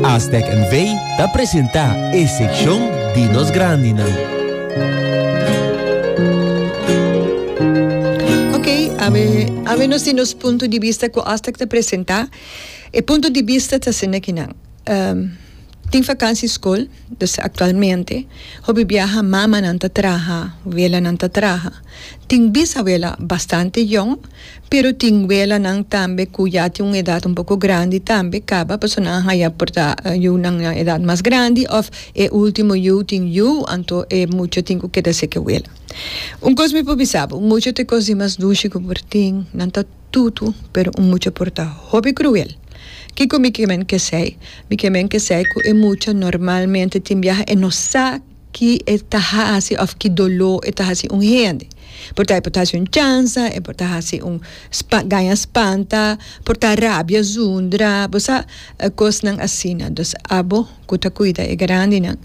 Aztec NV ta presenta e seccion di nos grandinan. Ok, awe, awe nos tin nos punto di bista cu Aztec ta presenta. E punto di bista ta asina aki nan. Um, tin vakansi school, dus actualmente hopi biaha mamanan ta traha, welanan ta traha. Tin bisawela bastante yòn, pero tin welanan tambe ku ya tin un edat un poko grandi tambe, kaba pasobra nan a haya por ta yunan na edat mas grandi òf e último yu tin yu, anto e mucha tin ku keda seke wela. Un kos mi por bisa bo, un mucha ta e kos di mas dushi ku por tin, nan ta tutu, pero un mucha por ta hopi kruel. Kiko mi ke men kesei? Mi ke men kesei ku e mucha normalmente tin biaha e no sa ki e ta hasi of ki doló e ta hasi un hende por ta e por ta hasi un chansa e por ta hasi un spa gaña spanta por ta rabia zundra bo sa kosnan asina entonces abo ku ta kuida e grandinan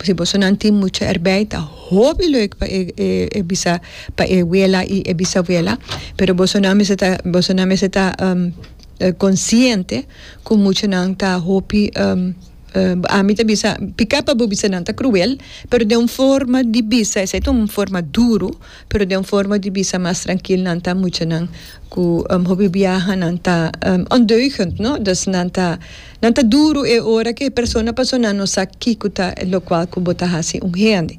si bo so nan tin mucha erbei ta hopi lek pa e e e bisa pa e wela i e bisabuela pero bo so nan mester ta bo so nan mester ta consciente ku mucha nan ta hopi. Ami ta bisa, picá pa bo bisa nan ta cruel, pero den un forma di bisa, esei ta un forma duro, pero den un forma di bisa mas trankil, nan ta muchanan ku hopi biaha nan ta ondeugend, no? Dus nan ta nan ta duro e ora ku e persona pasó nan no sa kiko ta lokual ku bo ta hasi un hende.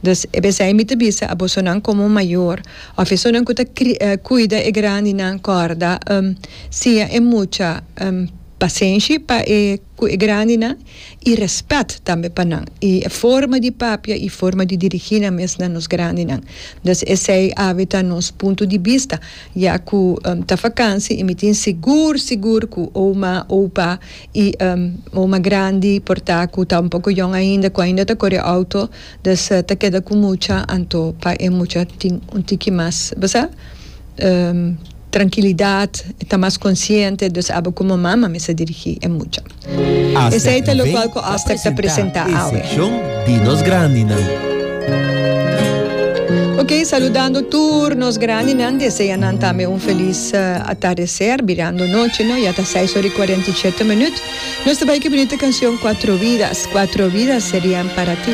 Dus e p'esei mi ta bisa abosonan komo mayor òf esonan ku ta kri kuida e grandinan kòrda siña e mucha Pasenshi pa e ku e grandinan i rèspèt tambe pa nan i e forma di papia i forma di dirigí nan mes na nos grandinan. Dus esei awe ta nos punto di bista ya ku ta fakansi i mi tin sigur sigur ku ouma, oupa i ouma grandi por ta ku ta un poko yòn ainda ku ainda ta kore outo, Des ta keda ku mucha anto pa e mucha tin un tiki mas bo sa trankilidat e ta mas konsiente dus aba komo mama mester dirigí e mucha. Esei ta lokual ku Astec ta presentá awe. Ok saludando tur nos grandinan desea nan tambe un felis atardeser birando nochi no ya ta seis ora i kuarenta i shete minut nos ta bai ku e bunita kanshon Cuatro vidas Cuatro vidas serian para ti.